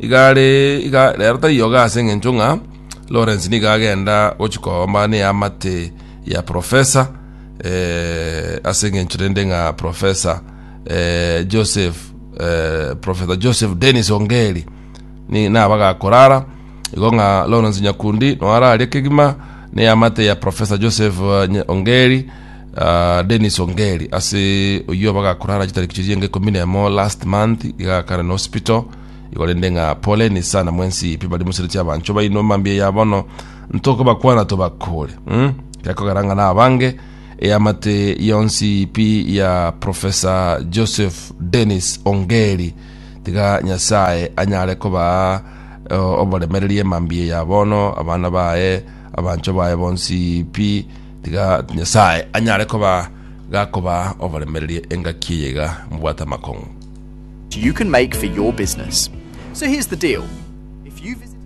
Igare iga rero tari yoga ase engencho ng'a Lawrence nigo agenda gochi koomba neamate ya profesa eh, ase engencho rende ng'a profesa eh, Joseph eh, profesa Joseph Dennis Ongeri ni naba gakorara igo ng'a Lawrence Nyakundi noararie kegima neamate ya profesa Joseph eh, Nye- Ongeri Ah, Dennis Ongeri ase oyio bagakorana chitariki chiria enge ikomi nemo last month igakana na hospital igo rende ng'a poleni sana mwensi pi bari musereti abancho baino mambia ya bono ntokobakwana tobakore mm? gekogera ng'a na abange eyamate yonsi pi ya professor joseph dennis ongeri tiga nyasaye anyare kobaa eh, oboremererie mambia ya bono abana baye abancho baye bonsi pi Tiga Nyasae anyare koba gakoba oboremereria engaki eye iga mobwate amakong'u. you can make for your business. So here's the deal. If you visit